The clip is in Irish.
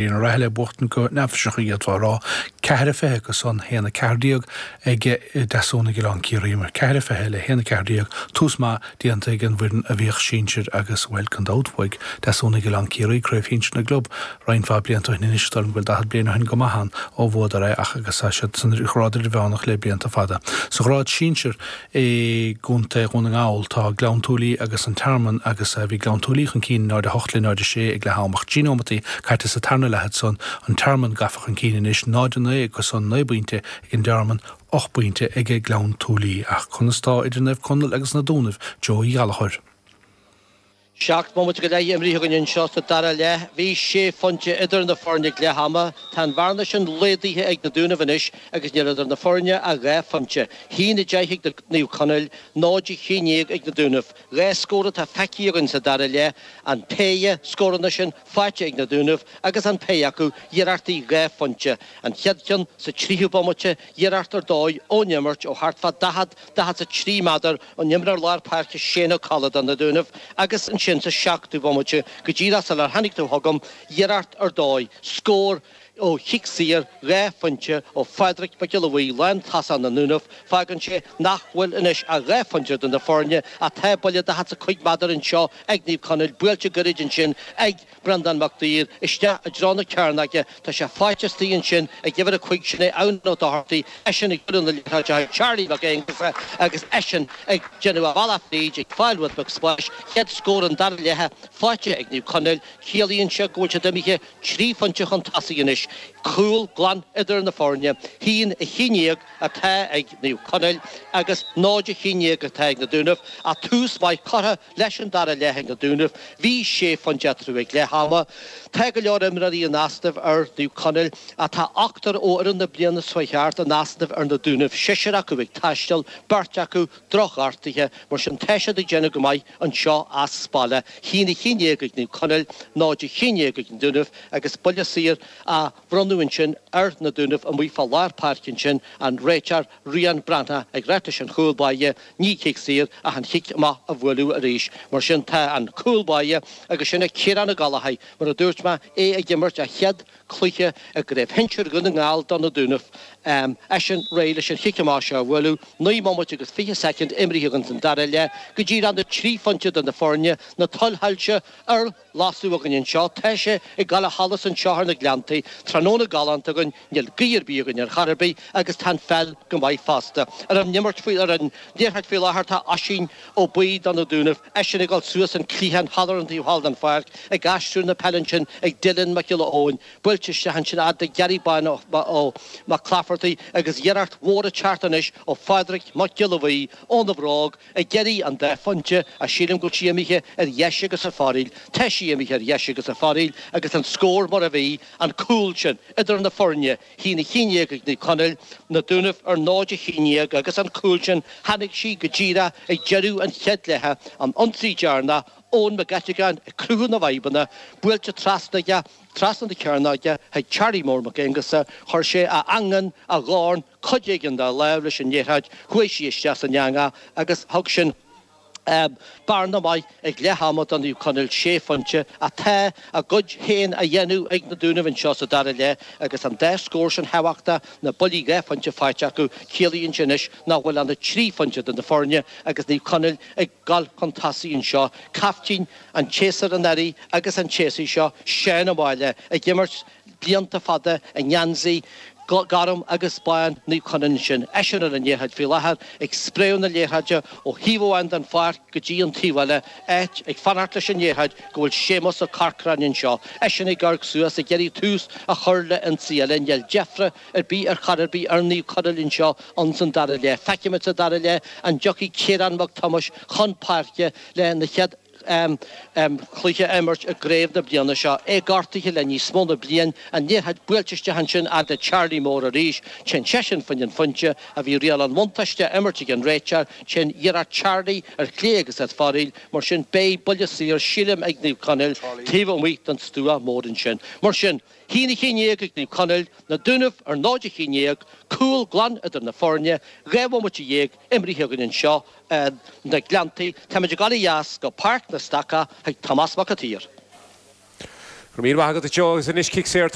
Uí Rathaille ag buachtaint go neafaiseach a d'fhéadfá a rá, ceathair a fiche acu san, haon a ceathair déag ag Deasúnaigh Oileán Ciarraí, mar ceathair a fiche le haon a ceathair déag, tús maith déanta ag an bhfoireann a bhíodh sinsir agus bhuel, gan dabht, bhuaigh Deasúnaigh Oileán Ciarraí Craobh Shinsir na gClub roinnt mhaith blianta ó shin anois, is dóigh liom go bhfuil daichead bliain ó shin go maith ann ó bhuadar é ach agus tá siad sa ghrád idirmheánach le blianta fada. Sa ghrád sinsir, i gContae Dhún na nGall tá Gleann tSúilí agus An Tearmann agus bhí Gleann tSúilí chun cinn, 0:08 le 0:06 ag leath am, ach trí nóimeataí caite sa tarna leath ansan, An Tearmann gafa chun cinn anois, 0:09 acu san, naoi bpointe ag An Tearmann, ocht bpointe ag Gleann tSúilí. Ach conas tá idir Naomh Conaill agus Na Dúnaibh? Joe Uí Ghallchóir. Seacht mbomaite go leith imrithe againn anseo sa dara leath. Bhí sé phointe idir na foirne ag leath ama. Tá an bhearna sin laghdaithe ag na Dúnaibh anois agus níl idir na foirne ach dhá phointe. Haon a deich ag Naomh Conaill, 0 a haon déag ag na Dúnaibh. Dhá scór atá feicthe againn sa dara leath, an péire scóranna sin faighte ag na Dúnaibh agus an péire acu iarrachtaí dhá phointe, an chéad cheann sa tríú bomaite iarracht ar dóigh ón imirt ó thart fá daichead, daichead 's a trí méadar, ón imreoir lár páirce Shane Ó Colla do na Dúnaibh agus ansin sa seachtú bhomaite go díreach sular tháinig tú chugam iarracht ar dóigh scór ó chic saor dhá phointe ó Phádraig Mac Giolla Bhuí lántosaí na nDúnaibh fágann sé nach bhfuil anois ach dhá phointe idir na foirne ach tá buille daichead 's a cúig méadar anseo ag Naomh Conaill buailte gairid ansin ag Breandán Mac Duibhir isteach i dtreo na cearnóige. Tá sé faighte istigh ansin ag uimhir a cúig, sin é Eoghan Ó Dochartaigh, eisean ag bualadh na liathróide chuig Charlie Mac Aonghusa agus eisean ag déanamh a bhealach fríd, ag fáil rud beag spáis. Chéad scór an dara leithe faighte ag Naomh Conaill. Ciallaíonn seo go bhfuil siad imithe trí phointe chun tosaigh anois. Cúl glan idir na foirne. Haon a haon déag atá ag Naomh Conaill agus 0 a haon déag atá ag na Dúnaibh ach tús maith curtha Leis an dara leath ag na Dúnaibh, bhí sé phointe eatarthu ag leath ama. Tá go leor imreoirí in easnamh ar Naomh Conaill, ach tá ochtar ó fhoireann na bliana seo chuaigh thart in easnamh ar na Dúnaibh, seisear acu ag taisteal, beirt acu drochghortaithe, mar sin tá siad ag déanamh go maith anseo as baile, haon a haon déag ag Naomh Conaill, 0 a haon déag ag na Dúnaibh agus buille saor á bhronnadh ansin ar Na Dúnaibh amuigh fá lár páirce ansin an réiteoir Rian Breathnach ag ráit leis an chúl báire ní cic saor ach an chic amach a bhualadh arís. Mar sin tá an cúl báire agus sin é Ciarán Ó Gallchóir mar a dúirt mé, é ag imirt a chéad cluiche i gCraobh Shinsir Dhún na nGall do Na Dúnaibh. Eisean réidh leis an chic amach seo a bhualadh. Naoi mbomaite agus fiche soicind imrithe againn san dara leath go díreach na trí phointe idir na foirne, na tuilsoilse ar Lasadh againn anseo, tá sé ag goil ó sholas anseo thar na Gleanntaí, tráthnóna galánta againn, níl gaoth ar bith againn ar chor ar bith agus tá an pheil go maith fosta. Ar an imirt faoi, ar an liathróid faoi láthair tá Oisín Ó Buí do na Dúnaibh, eisean ag dul suas an cliathán thall ar an taobh thall den pháirc ag aistriú na peile ansin ag Dylan Mac Giolla Eoin, buailte isteach ansin a fhad le Gary Bán Ó Mac Laifeartaigh agus iarracht mhór ag teacht anois ó Phádraig Mac Giolla Bhuí óna bhróg, Ag iarraidh an dá phointe, a sílim go bhfuil sí imithe ar dheis agus ar fóraoil, tá sí imithe ar dheis agus ar fóraoil agus an scór mar a bhí, an cúl sin idir na foirne, haon a haon déag ag Naomh Conaill, Na Dúnaibh ar náid a haon déag agus an cúl sin, tháinig sí go díreach ag deireadh an chéad leithe, an ionsaí deireanach, Eoin Mac Eiteagáin ag cruthú na bhfadhbanna, buailte trasna aige, trasna na cearnóige chuig Charlie Mór Mac Aonghusa, chuir sé a eangán, a dhorn, cuid éigin dá láimh leis an liathróid, chuaigh sí isteach san eangach agus thug sin bearna maith ag leath ama do Naomh Conaill sé phointe ach tá a gcuid féin á dhéanamh ag na Dúnaibh anseo sa dara leath agus an dá scór sin thábhachtach, na buillí dhá phointe faighte acu, ciallaíonn sé anois nach bhfuil ann ach trí phointe idir na foirne agus Naomh Conaill ag dul chun tosaigh anseo. Caiftín an tséasúir anuraidh agus an tséasúir seo, Seán Ó Máille, ag imirt. blianta fada i ngeansaí gorm agus bán Naomh Conaill sin, eisean ar an liathróid faoi láthair, ag spréadh na liathróide ó thaobh amháin den pháirc go dtí an taobh eile, áit, ag fanacht leis an liathróid, go bhfuil Séamus Ó Corcráin anseo, eisean ag amharc suas, ag iarraidh tús a chur le ionsaí eile. Níl deifre ar bith ar chor ar bith ar Naomh Conaill anseo, insan dara leath. Feicimid sa dara leath an dtiocfaidh Ciarán Mac Tomáis chun páirce le na chéad chluiche a imirt i gcraobh na bliana seo, é gortaithe le níos mó na bliain, an liathróid buailte isteach ansin fhad le Charlie Mór arís, téann seisean fá choinne an phointe a bhí riail an bhuntáiste á imirt ag an réiteoir, téann iarracht Charlie ar chlé agus ar fóraoil, mar sin beidh buille saor sílim ag Naomh Conaill taobh amuigh den stua mór ansin. Mar sin. Haon a haon déag ag Naomh Conaill, na Dúnaibh ar 0 a 11, cúl glan idir na foirne, dhá bhomaite dhéag imrithe againn anseo ar na Gleanntaí, táimid ag dul ó dheas go Páirc an Stacaigh chuig Tomás Mac an tSaoir. Go raibh míle maith agat a Joe agus anois cic saor